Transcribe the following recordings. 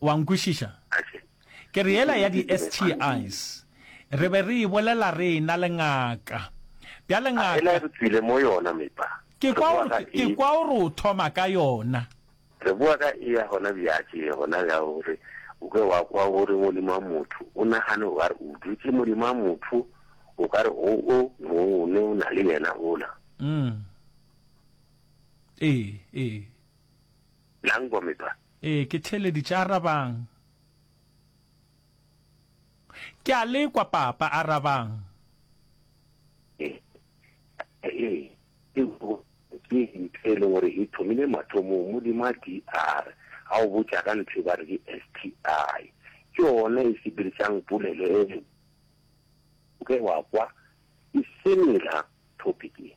Wa nkwešiša? Ke re yela ya di-STIs, re be re e bolela re e-na le ngaka. Bjale ngaka, ke kwa o re, ke kwa o re o thoma ka yona. Re boa ka ea hona bjatše, gona bja gore o ke wa kwa go re Modimo a motho. O nagane o ka re o dutše Modimo a motho, o ka re go o mong o ne o na le yena ola. Ee, ee. Nang bomme ba? Ee, ke theeleditše. Arabang. Ke a le kwa, Papa. Arabang. Ee, ee, eupša ke ntho e lego gore e thomile mathomong. Modimo a di are, ga o botša ka ntho e ba re ke STI. Ke yona e sepedišang polelo e. O ke wa kwa, e semela, topic e.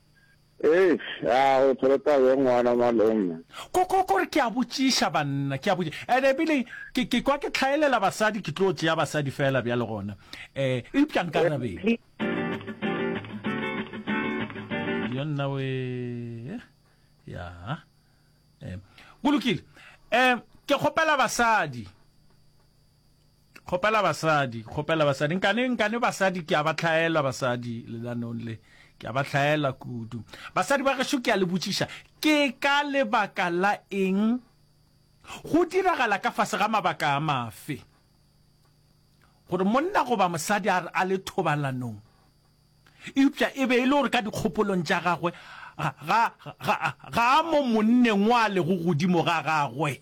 Eish, a o tshwere taba e ngwana malome. Ko, ko, ko re ke a botšiša banna, ke a botši, and e bile ke, ke kwa ke hlaelela basadi, ke tlo tšea basadi feela bjale gona, eh, eupša nkarabeng. Yo nna we, eh, ya, eh, go lokile, eh, ke kgopela basadi. Kgopela basadi, kgopela basadi. Nkane, nkane basadi ke a ba hlaela basadi lelanong le. Ke a ba hlaela kudu. Basadi ba gešo ke a le botšiša, ke ka lebaka la eng? Go diragala ka fase ga mabaka a mafe gore monna goba mosadi a, a le thobalanong eupša e be e le gore ka dikgopolong tša gagwe ga, ga, ga, ga a mo monneng wa lego godimo ga gagwe?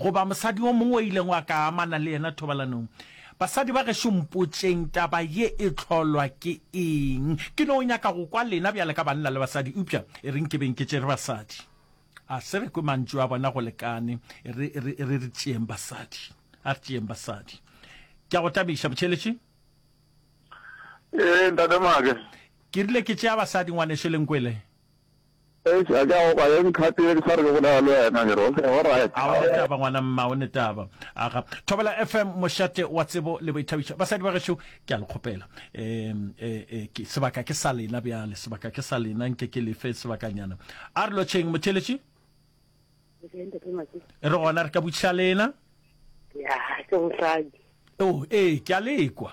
Goba mosadi o mongwe o ilego a ka amana le yena thobalanong. Basadi ba gešo mpotšeng, taba ye e hlolwa ke eng? Ke no nyaka go kwa lena bjale ka banna le basadi, eupša e re nke beng ke tšere basadi. A se re kwe mantšu a bona go lekane, e re, e re, e re re tšeeng basadi. A re tšeeng basadi. Ke a go tabiša, Motšheletše. Ee, Ntate Maake. Ke rile ke tšea basadi, Ngwanešu Lenkwele. Eish a ke a go kwa ye nkgatile ke sa re ke bolela le wena ke re okay all right. A o ne taba ngwana mma o ne taba. Aga Thobela FM mošate wa tsebo le boithabišo basadi ba gešo ke a le kgopela um um ke sebaka ke sa lena bjale sebaka ke sa lena nke ke lefe sebakanyana a re lotšheng motheletši re gona re ka butšha lena ya ke mosadi oh ee ke a lekwa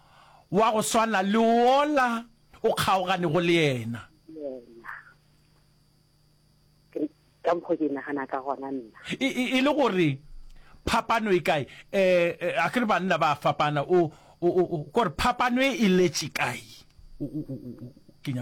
wa go swana le wola o kgaoganego le yena. Yena. Ke ka mokgwa ke nagana ka gona nna. E, e, e le gore phapano e kae? E, e, a ke re banna ba fapana, o, o, o, o, gore phapano e e letše kae? O, o, o, o, ke nyaka